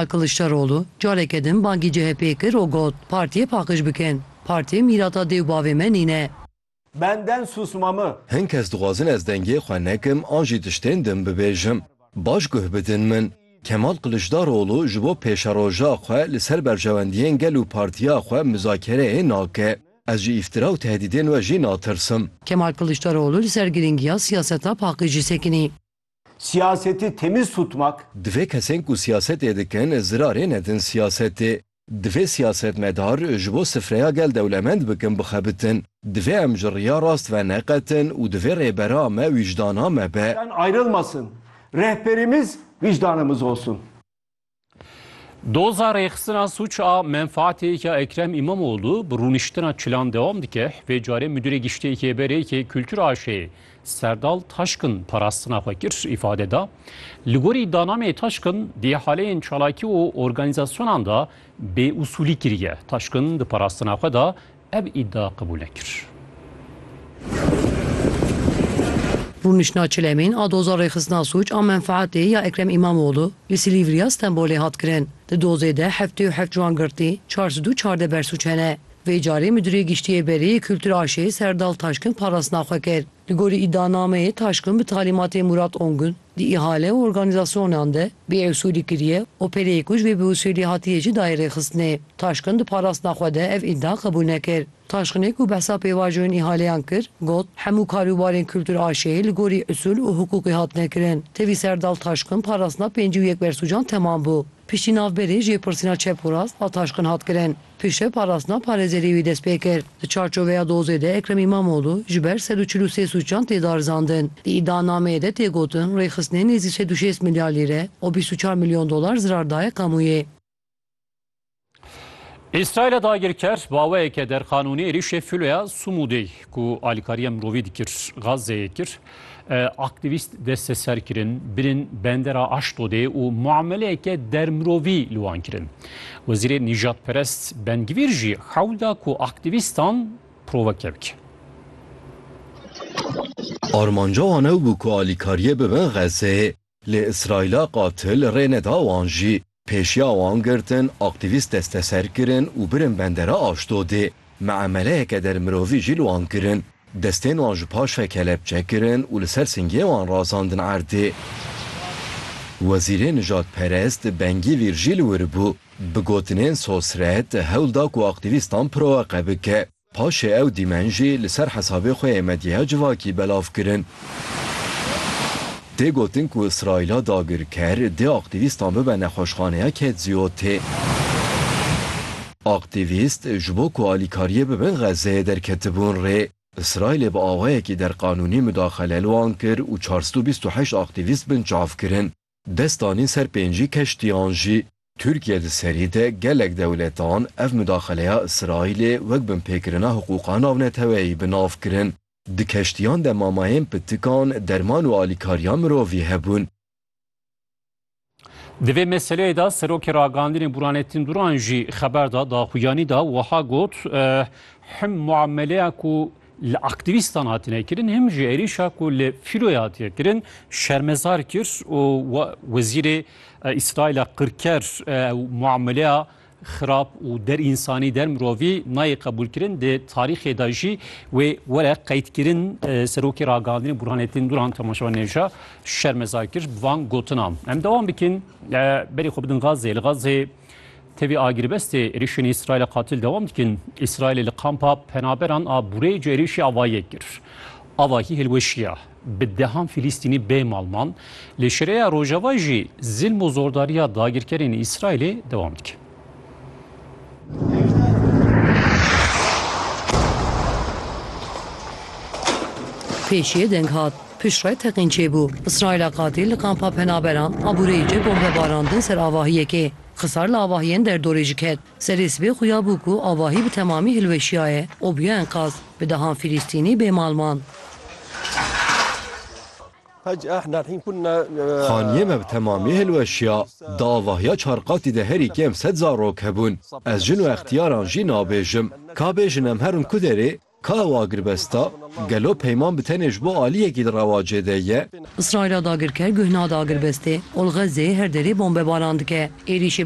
Kiliçdaroglu careke din bangî CHP'ê kir û got, Partiyê paqij bikin. Partî mîrata dê û bavê me nîne. Benden susmamı. Hin kes dixwazin ez dengê xwe nekim an jî tiştên din bibêjim. Baş guh bidin min. Kemal Kiliçdaroglu ji bo pêşeroja xwe li ser berjewendiyên gel û partiya xwe muzakereyê nake. Ez ji îftira û tehdîdên we jî natirsim. Kemal Kiliçdaroglu li ser girîngiya siyaseta paqijî sekinî. Siyasetê temiz tutmak. Divê kesên ku siyasetê dikin zirarê nedin siyasetê. Divê siyasetmedar ji bo sifreya gel dewlemend bikin bixebitin. Divê em ji riya rast ve neqetin û divê rêbera me wîcdana me be. Ayrılmasın. Rehberimiz vicdanımız olsun. Doza rêxistina suç a menfaatêyeke Ekrem İmamoğlu bi rûniştina çilan dewam dike. Vê carê Müdürê Giştê Kêberêkê Kültür AŞ'ê Serdal Taşkın parastina xwe kir îfade da. Li gorî danamê Taşkın di haleyên çalakî û organîzasyonan de bêusulî kiriye. Taşkın di parastina xwe de Ev îdia qebûl nekir. Rûniştina Çilemîn a doza rêxistina sûc a menfeatê ya Ekrem Îmamoglû li Silîvriya Stenbolê hat kirin. Di dozê de heftê û heft ciwan girtî, çar sed û çardeh bersûc hene. Vê carê Midûrê Giştî yê Berê yê Kultur AŞ'ê Serdal Taşkin parastina xwe kir. Li gorî îdianameyê Taşkın bi talîmatê Murat Ongün di îhale û organîzasyonan de bêusûlî kiriye û pêleyê ku ji vê biusûlî hatiye jî dayê rêxistinê. Taşkın di parastina xwe de ev îdia qebûl nekir. Taşkınê ku behsa pêvajoyên îhaleyan kir, got, Hemû kar û barên kultur a şê li gorî usûl û hukûkê hatine kirin. Tevî ser Dal Taşkın parastina pêncî û yek bersûcan temam bû. Piştî navberê jêpirsîna çep û rast a Taşkın hat kirin. Piştre parastina parêzerî wî dest pê kir. Di çarçoveya dozê de Ekrem Îmamoglû ji ber sed û çil û sê sûcan tê darizandin. Di îdianameyê de tê gotin rêxistinê nêzî sed û şêst milyar lîre û bîst û çar milyon dolar zirar daye kamûyê. Îsraîla dagirker baweyeke derqanûnî êrîşê filoya Sumûdê ku alîkariya mirovî dikir, Gazeyê kir. Aktîvîst desteser kirin, birîn bendera Aşdodê û muameleyeke dermirovî li wan kirin. Wezîrê nîjadperest Ben Gvîr jî hewl da ku aktîvîstan proveke bike. Armanca wan ew bû ku alîkariyê bibin Xezê. Lê Îsraîla qatil rê neda wan jî. Pêşiya wan girtin, aktîvîst desteser kirin û birin bendera Aşdodê. Miameleyeke dermirovî jî li wan kirin. Destên wan ji paş ve kelepçe kirin û li ser singê wan razandin erdê. Wezîrê nijadperest Bengîvîr jî li wir bû. Bi gotinên sosret, hewl da ku aktîvîstan proweqe bike. Paşê ew dîmen jî li ser hesabê xwe yê medyaya civakî belav kirin. Tê gotin ku Îsraîla dagirker dê aktîvîstan bibe nexweşxaneya Ketziyotê. Aktîvîst ji bo ku alîkariyê bibin Xezzeyê derketibûn rê. Îsraîlê bi awayekî derqanûnî mudaxele li wan kir û çar sed û bîst û heşt aktîvîst binçav kirin. Dest danîn ser pêncî keştiyan jî. Tirkiye di serî de gelek dewletan ev mudaxeleya Îsraîlê wek binpêkirina hiqûqa navneteweyî bi nav kirin. Di keştiyan de mamayên pitikan, derman û alîkariya mirovî hebûn. Di vê meseleyê de Serokê Ragandinê Burhanettin Duran jî xeber da, daxuyanî da wiha got, Him muameleya ku li aktîvîstan hatine kirin him ji êrîşa ku li Fîroyê hatiye kirin şermezar kir û wezîrê Îsraîla qirker ew muameleya xirab û der însanî der mirovî nayê qebûlkirin di tarîxê de jî wê were qeydkirin serokê ragihandinê Burhanettin Duran temaşewa nêja şermezar kir bi van gotinan em dewam bikin berê xwe bidin Gazê li Gazê Tevî agirvestê êrişên Îsraîlê qatil dewam dikin. Îsraîlê li kampa penaberan a Burêj êrişî ava yek kir. Avahî hilweşiya. Bi dehan Fîlîstînî bê malman li Şireya Rojava jî zilm û zordariya dagirkerên Îsraîlê dewam dike. Pêşiye deng hat. Piştre teqîn çêbû. Îsraîla qatî li kampa penaberan aboreyê cih bombe barandin ser avahiyekê. Xisar li avahiyên derdorê jî ket. Serê sibê xuya bû ku avahî bi temamî hilweşiyaye û bûye enqaz. Bi dehan Fîlîstînî bêmal man. Haniyê me bi temamî hilweşiya. Di avahiya çar qatî de herî kêm sed zarok hebûn. Ez jin û extiyaran jî nabêjim. Ka bêjin em herin ku derê Ka ew agirbest a, gelo peyman bi tenê ji bo aliyekî di rewacê de ye? Îsraîla dagirker guh nade agirbestê, Olxezê her derê bombebaran dike. Êrîşê